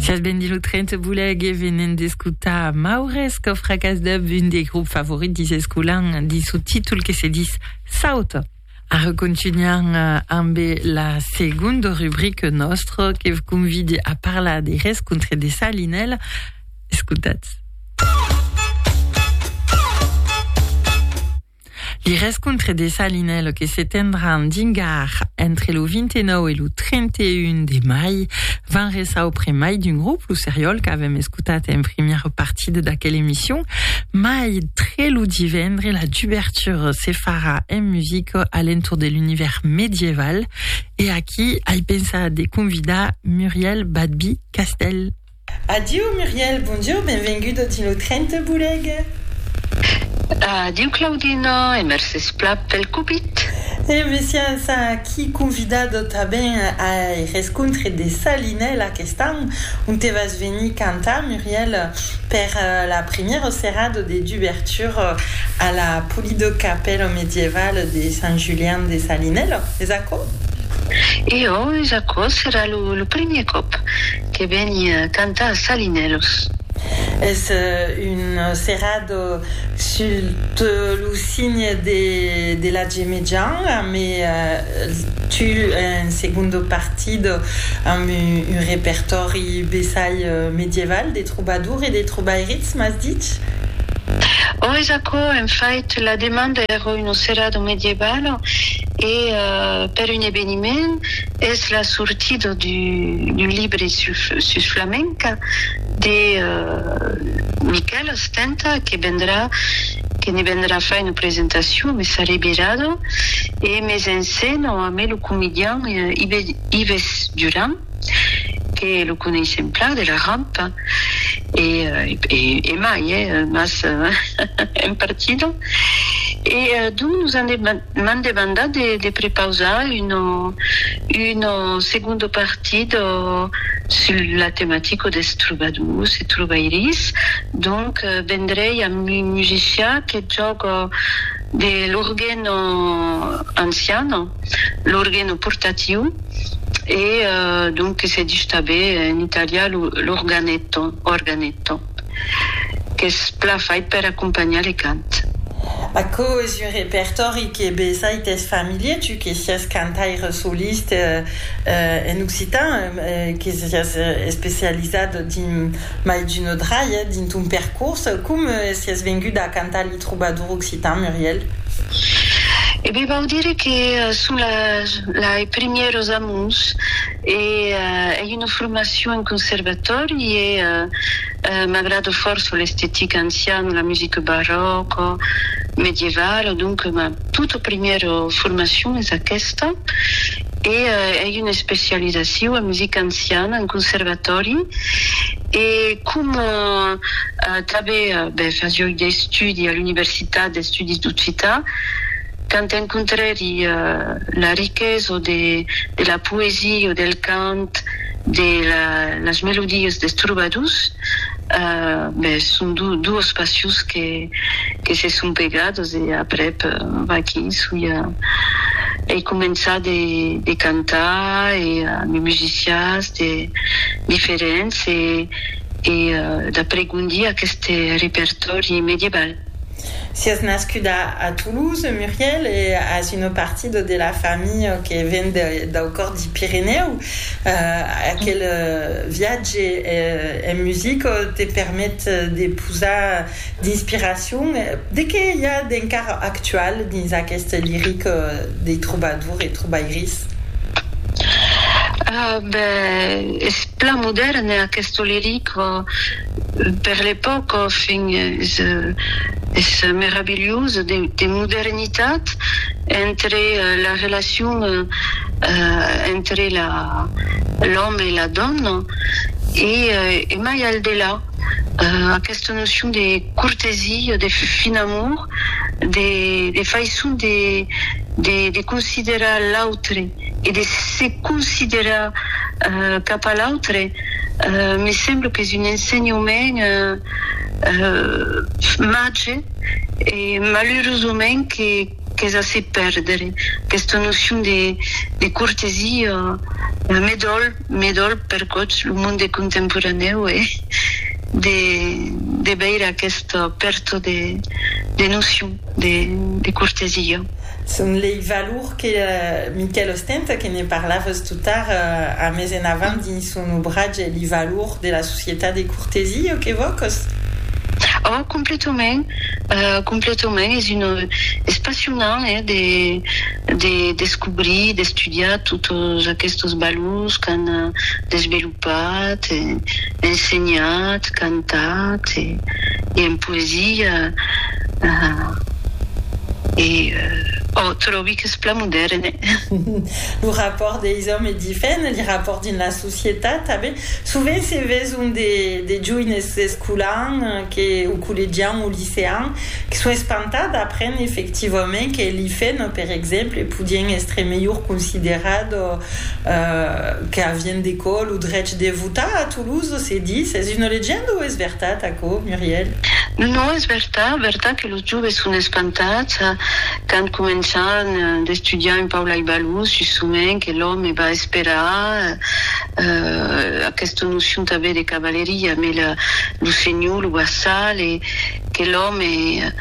Sias ben dit lo 30 boleg e venen d'escutar Maures que fracas deb un des groupes favorits dis escolan dis su títol que se dis Saut. Ara contunhan ambe la segonda rubrique nostra que v convide a parlar de rescontre de Salinel. Escutatz. Li rescontre Dessalinello que se tendràn dingar entre lo 29 e lo 31 de mai van resar au près mai d'un grop, lo seriòl qu'avèm escotat en primièra partida d'aquela emission, mai tre lo divendre la dubertura se farà en musica a l'entorn de l'univèrs medieval e aquí ai pensat de convidar Muriel Badby-Castell. Adieu Muriel, bonjour, benvenguda dins lo tren te bolega. Adieu Claudina e mercés pla pel copit. E messiás, aqui convidado tanben ai rescontre de Salinèl aquest an, onte vas venir cantar Muriel per la primièra serada de dubertura a la polida capèla medievale de Sant Julian de Salinèl, es aquò? E ò, es aquò, serà lo primièr còp. que veni cantar a Salinèlos. Es un serrat sut lo signe de la Gemejan, amé tu en segundo partit amb un repertòri bessai medieval de trobadour e de trobairits, m'as dich? Ò, es aquò, en fait, la demanda èra un serrado medieval e per un eveniment Es la sortida d'un libre sus flamenca de Miquèl Astenta que vendrà, que ne vendrà far una presentacion mès arribirada e mès en scèna amé lo comedian Ives Duran que lo coneissèm plan de la Rampa e mai, mas en partida e donc nos an M'an demandat de de prepausar un un segundo partit sul la tematica des trobadors e trobairis, donc vendrei amb un musician que jòga de l'orgueno anciano, l'orgueno portatiu e donc que se dich tanben en italian l'organetto, organetto. qu'es plan fait per acompanhar le cant. Aquò es un repertòri que besai t'es familier, tu que siás cantaire soliste en occitan, que siás especializat dins mai d'una dralha dins ton percors. Com siás vengut a cantar li trobador occitan, Muriel? E ben, vau dire que son la, lai primièros amors. Ei una formacion en conservatòri e m'agrada fòrça l'estetica anciana, la musica barròca, medievala, donc ma tota primièra formacion es aquesta e ei una especializacion en musica anciana en conservatòri e coma tanben fasia d'estudi a l'universitat, d'estudis d'occitan, quand encontrèri la riquesa de la poesia, del cant, de las melodias des trobadors, ben son duas passions que se son pegadas e aprèp vaquí soi a ei començar de cantar e ami musicians diferents e d'apregondir aqueste repertòri medieval. Siás nascuda a Toulouse, Muriel, e as una partida de la familha que ven dau còr d'i Pirenèu. Aquel viatge en musica te permet de posar d'inspiracion. De qué i a d'encara actual dins aquesta lirica dei trobadors e trobairis? Ben, es plan modèrne aquesta lirica. Per l'epòca fin es meravilhós de modernitat entre la relacion entre l'òme e la dòna e mai al delà aquesta nocion de cortesia, de fin amor, de faisson de considerar l'autre. e de se considerar cap a l'autre, me sembla qu'es un ensenhament màger e malurosament qu'es a se pèrdre, aquesta nocion de cortesia me dòl, me dòl per gots lo monde contemporanèu e de veire aquesta pèrta de nocion de cortesia. Son lei valor que Miquèl ostenta, que ne parlavas tot tard, a mes en avant dins son obratge li valor de la societat de cortesia o que vòcos? Ò, completament, completament, es un, es passionant, eh, de, de descobrir, d'estudiar totes aquestos valors qu'an desvelopat. Pas e ensenhat, cantat e e en poesia e ò tròbi qu'es plan modèrn e. Lo rapòrt deis òmes e difèn li rapòrt dins la societat tanben sovent se veson de de joines escolan que o collegian o licean que son espantat d'aprendre efectivament que li fèn per exemple podien èstre melhor considerat ò Que avien decò lo drech de votar a Toulouse, se ditz. Es una legenda o es vertat aquò, Muriel? Non, non, es vertat, vertat que los joves son espantats quand començan d'estudiar un pauc lai balhós sus çò mèn que l'òme va esperar, aquesta nocion tanben de cavaleria, mai lo Senhor lo va sal e que l'òme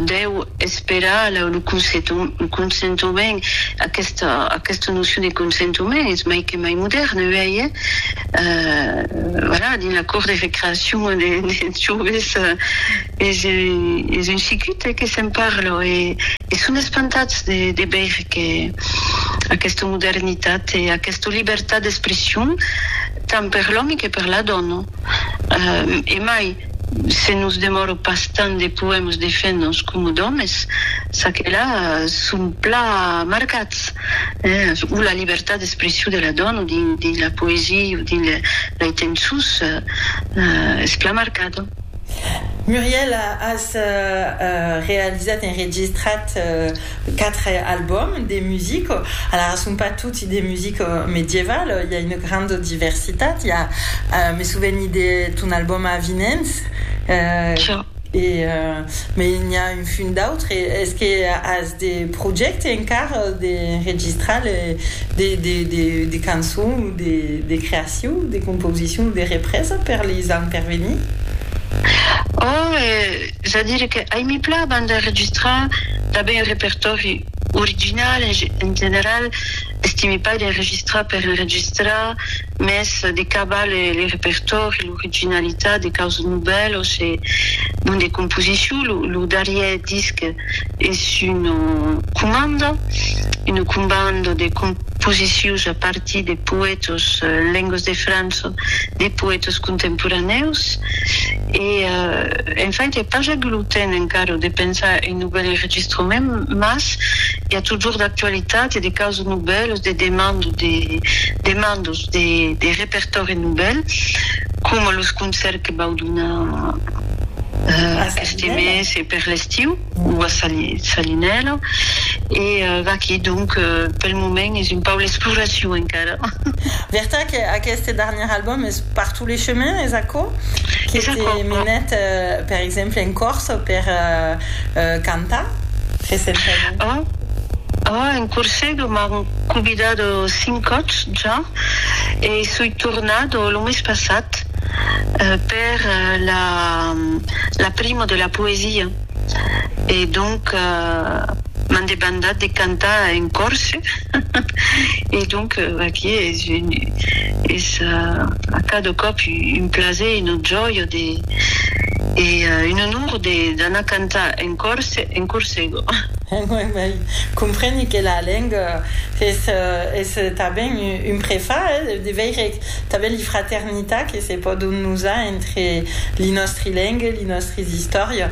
deu esperar lo consentoment, aquesta nocion de consentoment es mai que mai modèrna uèi, hè? Voilà, dins la cort de recreacion des joves es un chicut, hè, que se'n parla e son espantats de veire que aquesta modernitat e aquesta libertat d'expression tant per l'òme que per la dòna e mai, Se nos demòro pas tant de poèmas de femnas coma d'òmes, çaquelà son pla marcats, o la libertat d'expression de la dòna dins la poesia o dins lei tençons es pla marcada. Muriel, as realizat, enregistrat, 4 albòms de musica, alara son pas toti de musica medievale, i a una granda diversitat, i a, me sò venit de ton albòm Avinents, e mai n'i a un funt d'autres, es que as de projèctes encara d'enregistrar de cançons o de creacion, de composicion o de represa per les ans per venir? Es a dire que ai mi plan a banda enregistrar tanben un repertòri original, en general estimi pas d'enregistrar per enregistrar, mès de cavar le repertòri, l'originalitat de causas novèlas e bon de composicion, lo darrièr disc es una comanda, una combanda de composicius a partir de poètas en lengas de França, de poètas contemporanèus. E, en fait, i a pas agut lo temps encara de pensar un novèl enregistrament, mas i a totjorn d'actualitat e de causas novèlas, de demandas, de demandas de de repertòri novèl, coma los concèrts que vau donar aqueste mes e per l'estiu. ua salinèla e vaquí donc pel moment es un pauc l'exploracion encara. Vertat que aqueste darnièr album es par tous les chemins, es aquò? Que te menèt per exemple en Corse per cantar recentament? Òc, òc, en Corse que m'an convidat cinc còps ja e soi tornat lo mes passat. per la primo de la poesia e donc m'an debandat de cantar en corse e donc aquí es a cada còp un plaser e una jòia e un onor d'anar cantar en corse en corsego. Uèi, compreni que la lenga es tanben un prefach, de veire Tanben li fraternitat que se pòdon nosar entre li nòstri lengue, li nòstris istòria.